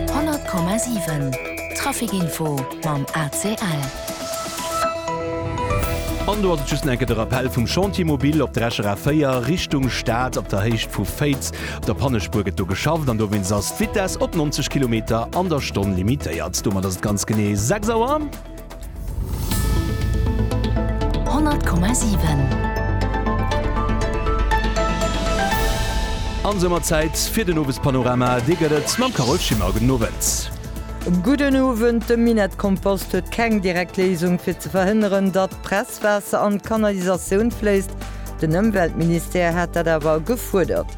100,7 Trafic info mam ACL. An do ass et just nach enke de Rappell vum Chantier mobile op der Escher A 4 Richtung Stad, op der Héicht vu Féiz. Op der Pannespuer gëtt do geschafft an dowéinst ass d'Vitess op 90 Kilometer an der Stonn limitéiert. Domat ass et ganz genee 6 Auer. An soumat Zäit fir den Owespanorama. Dee gëtt et mam Carole Schimmer. Gudden Owend. Gudden Owend. De Minett Kompost huet keng direkt Léisung fir ze verhënneren, datt d'Presswaasser an d'Kanalisatioun fléisst. Den Ëmweltministère hat dat awer gefuerdert.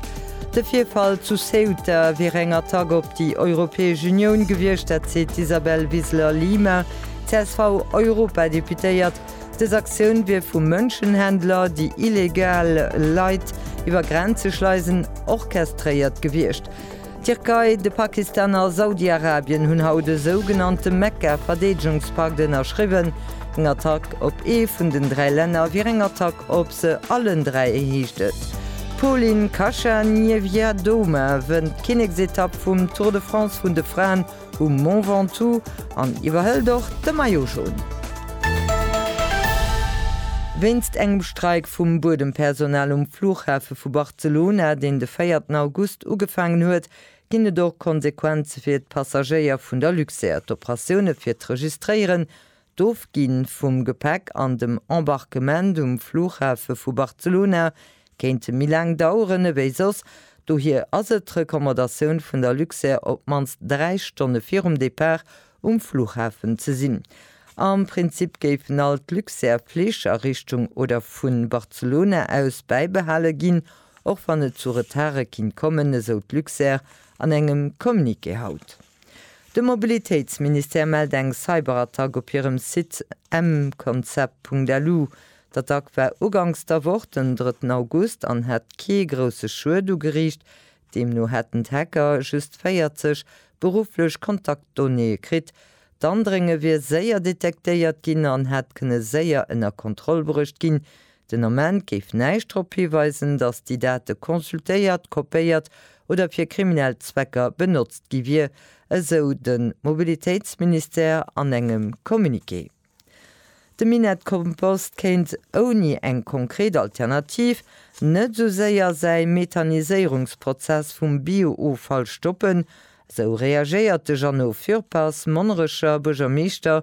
De Virfall zu Ceuta wier eng Attack op déi Europäesch Unioun gewiescht, dat seet d'Isabel Wiseler-Lima, CSV-Europadeputéiert. Dës Aktioun wier vu Mënschenhändler, déi illegal Leit iwwer Grenze schleisen, orchestréiert gewiescht. D'Tierkei, de Pakistan a Saudi-Arabien hunn haut e sougenannte Mekka-Verdeedegungspakt ënnerschriwwen. Eng Attack op ee vun den dräi Länner wier eng Attack op Se allen dräi heescht et. D'Polin Kacha-Niewiadoma wënnt d'Kinneksetapp vum Tour de France vun de Fraen um Mont Ventoux an iwwerhëlt och de Maillot Jaune. Wéinst engem Streik vum Buedempersonal um Flughafe vu Barcelona, deen de véierten August ugefaangen huet, ginn et och Konsequenze fir d'Passagéier vun der Luxair. D'Operatioune fir d'Registréieren D'Ofgi vum Gepäck an dem Embarquement um Flughafe vu Barcelona kéinte méi laang daueren ewéi soss, dohier ass et d'Recommandatioun vun der Luxair op d'mannst 3 Stonne virum Depart um Flughafen ze sinn. Am Prinzip géifen all d'Luxair Flich a Richtung oder vu Barcelona aus bäibehale ginn, och wann et zu Retarde kinnt kommen, esou d'Luxair an engem Communiqué haut. De Mobilitéitsministère mellt eng Cyberattack op hirem Site mconcept.lu. D'Attack war uganks der Woch, den drëtten August, an hätt kee grousse Schued ugeriicht. Deemno hätten d'Hacker just 40 berufflech Kontaktdonnéeë kritt. D'Andrénge wier séier detektéiert ginn an hätt kënne séier ënner Kontroll bruecht ginn, Den Ament géif näischt drop hiweisen, datt déi Date consultéiert, kopéiert oder fir kriminell Zwecker benotzt gi wier, esou de Mobilitéitsministère an engem Communiqué. De Minett Kompost kéint ouni eng konkret Alternativ net esou séier säi Methaniséierungsprozess vum Bio-Offall stoppen, esou reagéiert de Jeannot Fürpass, Monnerecher Buergermeeschter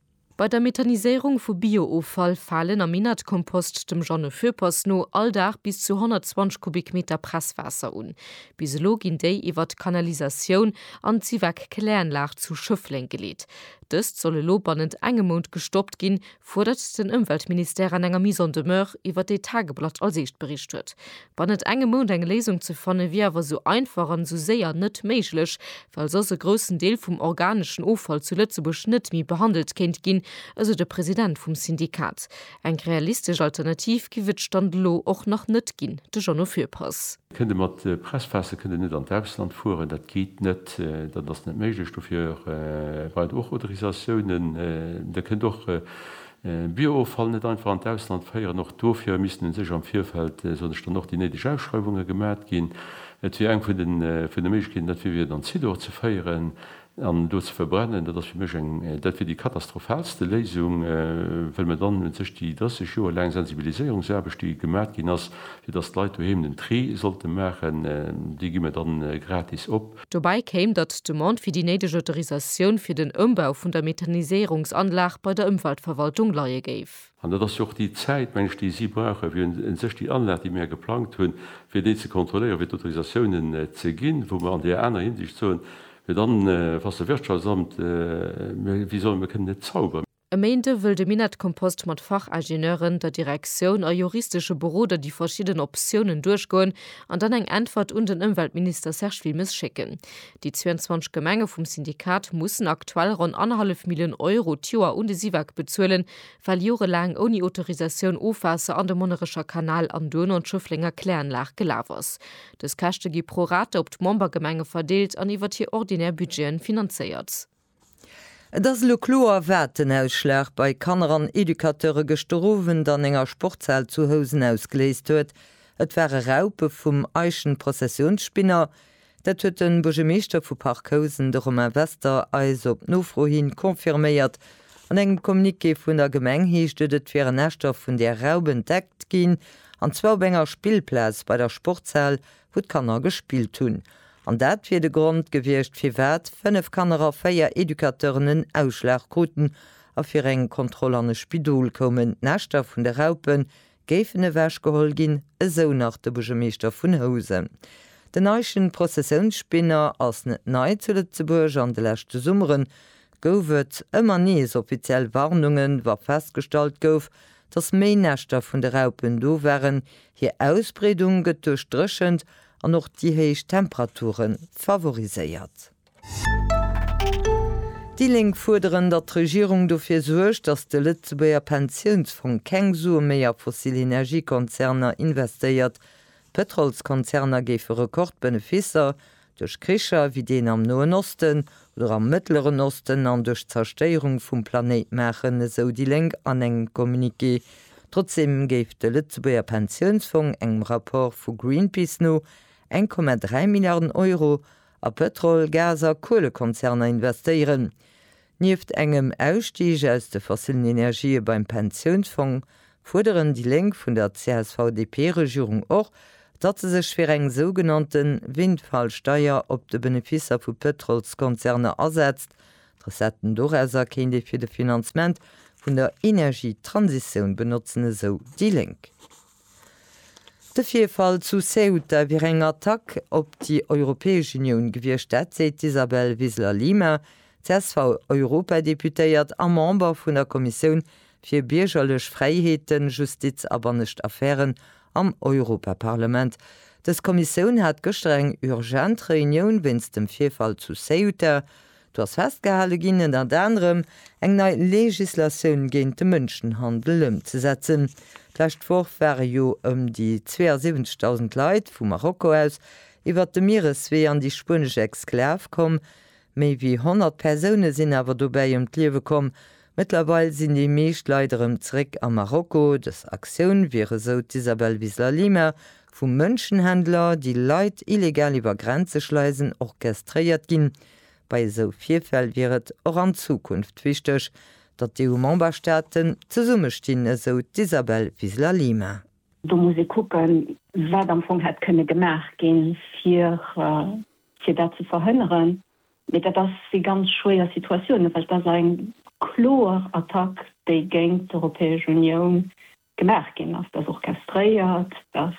Bei der Methaniséierung vu Bio-Offall falen am Inertkompost dem Jeannot Foeppers no all Dag bis zu 120 Kubikmeter Presswaasser un. Bis elo ginn déi iwwer d'Kanalisatioun an d'Sivac-Kläranlag zu Schëffleng geleet. Dëst soll elo bannent engem Mount gestoppt ginn, fuerdert den Ëmweltministère an enger Mise en demeure, iwwer déi d'Tageblatt als Eescht bericht huet. Wann et engem mount eng Léisung ze fanne wier awer sou einfach an sou séier net méiglech, well soss e groussen Deel vum organeschen Offall zu Lëtzebuerg net méi behandelt kéint ginn, esou de President vum Syndikat. Eng realistesch Alternativ giff et Stand elo och nach net ginn, de Jeannot Fürpass. Kënnt e mat Presspässe, kënnt e net an d'Ausland fueren, dat geet net, dat ass net méiglech. Dofir brauch et och Autorisatiounen. Der kënnt och Bio-Offall net einfach an d'Ausland féieren, och dofir missten u sech am Virfeld, soen ech dann, och déi néideg Ausschreiwunge gemat ginn. Et wier eng vun de Méiglechkeeten, dat wier fir et an Zidor ze féieren an do ze verbrennen. Dat ass fir mech eng, dat wier déi katastrophalste Léisung, well mer dann u sech déi 30 Joer laang Sensibiliséierungsaarbecht, déi gemat ginn ass, fir datt d'Leit doheem den Tri sollte maachen, déi gi mer dann gratis op. Dobäi kéim, datt d'Demande fir déi néideg Autorisatioun fir den Ëmbau vun der Methaniséierungsanlag bei der Ëmweltverwaltung leie géif. An dat ass jo och déi Zäit, meng ech, déi si brauche fir u sech déi Anlag, déi mir geplangt hunn, fir déi ze kontrolléieren, fir d'Autorisatiounen ze ginn, wou mer an där aner Hinsicht soen, fir dann, was de Wirtschaftsamt, mir, wéi soll, mir kënnen net zauberen. E Méinde wëll de Minett Kompost mat Fachingenieuren, der Direktioun a juristesche Beroder déi verschidden Optiounen duerchgoen an dann eng Äntwert un den Ëmweltminister Serge Wilmes schécken. Déi 22 Gemenge vum Syndikat mussen aktuell ronn annerhallef Millioun Euro d'Joer un de Syvag bezuelen, well jorelaang ouni Autorisatioun Ofwaasser an de Monnerecher Kanal an duerno an d'Schëfflenger Kläranlag gelaf ass. Dës Käschte gi pro rata op d'Membergemenge verdeelt an iwwert hir ordinär Budgeten finanzéiert. Et ass elo kloer, wat den Ausschlag bei Kanner an Educateure gëschter Owend an enger Sportshal zu Housen ausgeléist huet. Et ware Raupe vum Eichenprozessionsspinner. Dat huet de Buergermeeschter vu Parc Housen, de Romain Wester, eis op Nofro hin confirméiert. An engem Communiqué vun der Gemeng heescht et, et wieren Näschter vun där Raup entdeckt ginn, an zwar op enger Spillplaz bei der Sportshal wou d'Kanner gespillt hunn, an dat wier de Grond gewiescht, firwat 5 Kanner a 4 Educateuren en Ausschlag kruten a fir eng Kontroll an e Spidol koumen. D'Näschter vun de Raupe géifen ewechgeholl ginn, esou nach de Buergermeeschter vun Housen. Den Eichenprozessiounsspinner ass net nei zu Lëtzebuerg. An de leschte Summere gouf et ëmmer nees offiziell Warnungen, wa festgestallt gouf, datt méi Näschter vun de Raupen do waren. Hir Ausbreedung gëtt duerch d'Dréchent an och déi héich Temperature favoriséiert. Déi Lénk fuerderen, datt d'Regierung dofir suergt, datt de Lëtzebuerger Pensiounsfong keng Sue méi a fossil Energiekonzerner investéiert. D'Pëtrolskonzerner géife Rekordbeneficer Duerch Kricher wéi deen am Noen Osten oder am Mëttleren Osten an duerch d'Zerstéierung vum Planéit maachen, esou déi Lénk an engem Communiqué. Trotzdeem géif de Lëtzebuerger Pensiounsfong engem Rapport vu Greenpeace no 1,3 Milliarden Euro a Pëtrol-, Gas a Kuelekonzerner investéieren. Nieft engem Ausstig aus de fossillen Energië beim Pensiounsfong fuerderen déi Lénk vun der CSV-DP-Regierung och, datt se sech fir eng sougenannte Windfall-Steier op de Benefisser vu Pëtrolskonzerner asetzt. D'Recetten dorauser kéint ee fir de Finanzement vun der Energietransitioun benotzen, esou déi Lénk. De Virfall zu Ceuta wier eng Attack op déi Europäesch Unioun gewiescht, dat seet d'Isabel Wiseler-Lima, CSV-Europadeputéiert a Member vun der Kommissioun fir biergerlech Fräiheeten, Justiz a bannescht Affären am Europaparlament. Dës Kommissioun hat gëschter eng urgent Reunioun wéinst dem Virfall zu Ceuta. Do ass festgehale ginn, ënnert anerem eng nei Legislatioun géint de Mënschenhandel ëmzesetzen. D'lescht Woch ware jo ëm déi 72.000 Leit vu Marokko aus iwwert de Miereswee an déi spuenesch Exklav komm, Méi wéi 100 Persoune sinn awer dobäi ëm d'Liewe komm. Mëttlerweil sinn déi meescht Leit erëm zeréck a Marokko. Dës Aktioun wier, esou d'Isabel Wiseler-Lima, vu Mënschenhändler, déi Leit illegal iwwer Grenze schleisen, orchestréiert ginn. Bei esou Virfäll wier et och an Zukunft wichteg, datt d'EU-Memberstaaten zesummestinn, esou d'Isabel Wiseler-Lima. Do muss ee kucken, wat am Fong hätt kënne gemaach ginn, fir fir dat ze verhënneren, mee dat ass si ganz schwéier Situatiounen, well et ass eng kloer Attack, déi géint d'Europäesch Unioun gemaach ginn ass. Dat ass orchestréiert, dass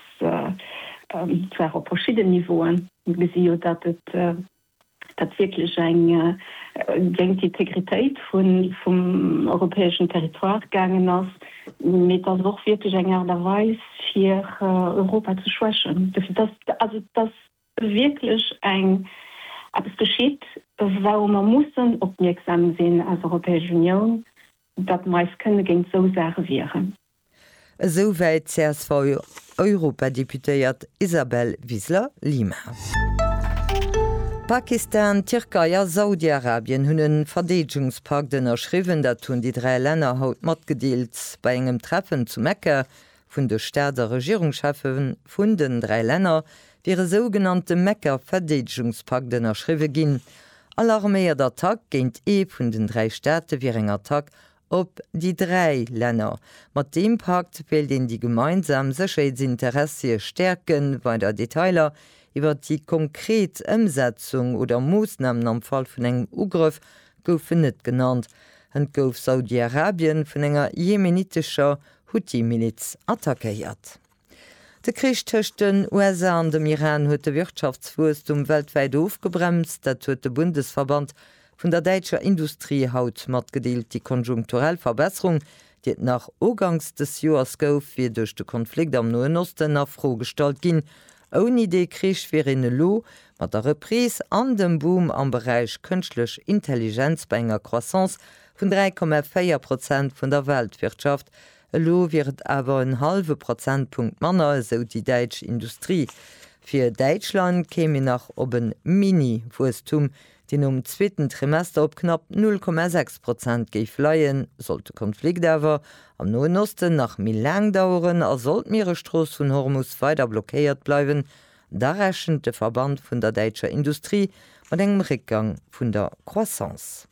zwar op verschidden Niveauen, mir gesi jo, datt et dat wierklech eng géint d'Integritéit vum europäeschen Territoire gaangen ass, mee et ass och wierklech eng Aart a Weis, fir Europa ze schwächen. Dofir, dass, also dass wierklech eng eppes geschitt, wourou mer mussen opmierksam sinn als Europäesch Unioun, datt mer eis kënne géint esou Saache wieren. Esou wäit d'CSV-Europadeputéiert Isabel Wiseler-Lima. Pakistan, d'Tierkei a Saudi-Arabien hunn e Verdeedegungspakt ënnerschriwwen. Dat hunn déi dräi Länner haut matgedeelt bei engem Treffen zu Mekka vun de Staats a Regierungscheffe vun den dräi Länner wier e sougenannte Mekka-Verdeedegungspakt ënnerschriwwe ginn. All arméiert Attack géint ee vun den dräi Staate wier eng Attack op déi dräi Länner. Mat deem Pakt wéilt een déi gemeinsam Sécherheetsinteressie stäerken. Weider Detailer iwwer déi konkret Ëmsetzung oder Moossnamen am Fall vun engem Ugrëff goufen net genannt. Hënt gouf Saudi-Arabien vun enger jemenitescher Huthi-Miliz attackéiert. De Krich tëscht den USA an dem Iran huet de Wirtschaftswuesstum weltwäit ofgebremst. Dat huet de Bundesverband vun der däitscher Industrie haut matgedeelt. Déi konjunkturell Verbesserung, déi et nach ugangs des Joers gouf, wier duerch de Konflikt am Noen Osten a Fro gestallt ginn. Ouni dee Krich wier een elo mat der Reprise an dem Boom am Beräich Kënschtlech Intelligenz bei enger Croissance Vun 3,4 Prozent vun der Weltwirtschaft. Elo wier et awer en hallwe Prozentpunkt manner, esou déi däitsch Industrie. Fir Däitschland kéim een nach op e Mini-Wuesstum, deen nom zweeten Trimester op knapp 0,6 Prozent géif leien. Sollt de Konflikt awer am Noen Osten nach méi laang daueren a sollt d'Mieresstrooss vun Hormus weider blockéiert bleiwen, da rechent de Verband vun der däitscher Industrie mat engem Réckgang vun der Croissance.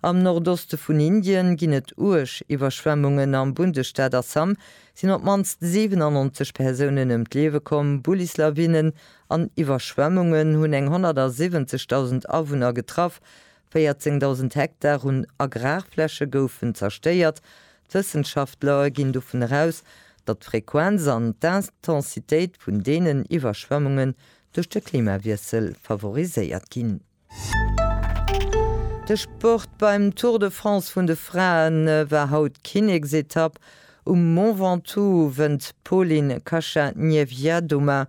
Am Nordoste vun Indien ginn et uerg Iwwerschwemmungen. Am Bundesstaat Assam sinn op d'mannst 97 Persounen ëm d'Liewe komm. Bullislawinnen an Iwwerschwemmungen hunn eng 170.000 Awunner getraff. 14.000 Hektar un Agrarfläche goufen zerstéiert. D'Wëssenschaftler ginn dovun eraus, datt d'Frequenz an d'Intensitéit vun deenen Iwwerschwemmungen duerch de Klimawiessel favoriséiert ginn. De Sport, Beim Tour de France vun de Frae war haut d'Kinneksetapp um Mont Ventoux, wënnt d'Polin Kacha-Niewiadoma,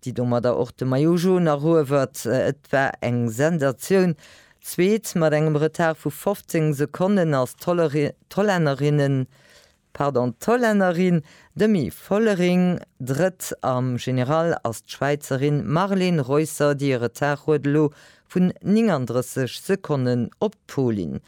déi domadder och de Maillot Jaune eruewert. Et war eng Sensatioun. Zweet mat engem Retard vu 15 Sekonnen ass d'Hollännerinne Pardon, d'Hollännerin Demi Vollering drëtt am General, ass d'Schwäizerin Marleen Reusser, déi e Retard huet elo vun 39 Sekonnen op d'Polin.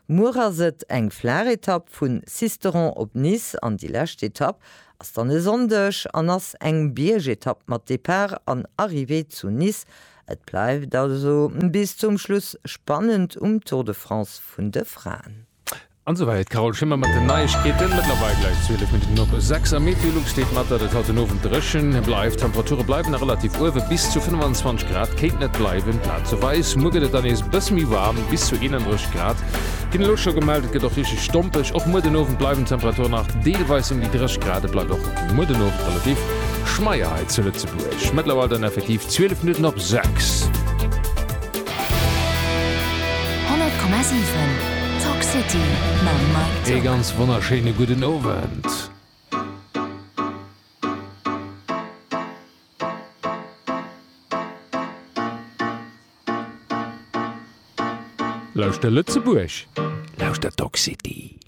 Muer ass et eng flaach Etapp vun Sisteron op Nice an déi lescht Etapp ass dann e Sonndeg an ass eng Biergetapp mat Depart an Arrivée zu Nice. Et bleift also bis zum Schluss spannend um Tour de France vun de Fraen. An esou weier et d'Carole Schimmer mat den Neiegkeeten. Mëttlerweil gläich 12 Minutten no 6 am Meteolux steet mat, datt et haut den Owend dréchen bleift. D'Temperature bleiwen nach relativ uewe, bis zu 25 Grad kéinten et bleiwen, plazeweis. Muer gëtt et dann nees e bësse méi waarm, bis zu 31 Grad ginn elo scho gemellt. Et gëtt och richteg stompeg. Och muer den Owend bleiwen d'Temperature nach deelweis ëm déi 30 Grad. Et bleift och muer den Owend relativ schmeier hei zu Lëtzebuerg. Mëttlerweil dann effektiv 12 Minutten op 6. 100,7 Talk City mam Mike Dierks. Ee ganz wonnerschéine gudden Owend. Lauschter Lëtzebuerg, lauschter Talk City.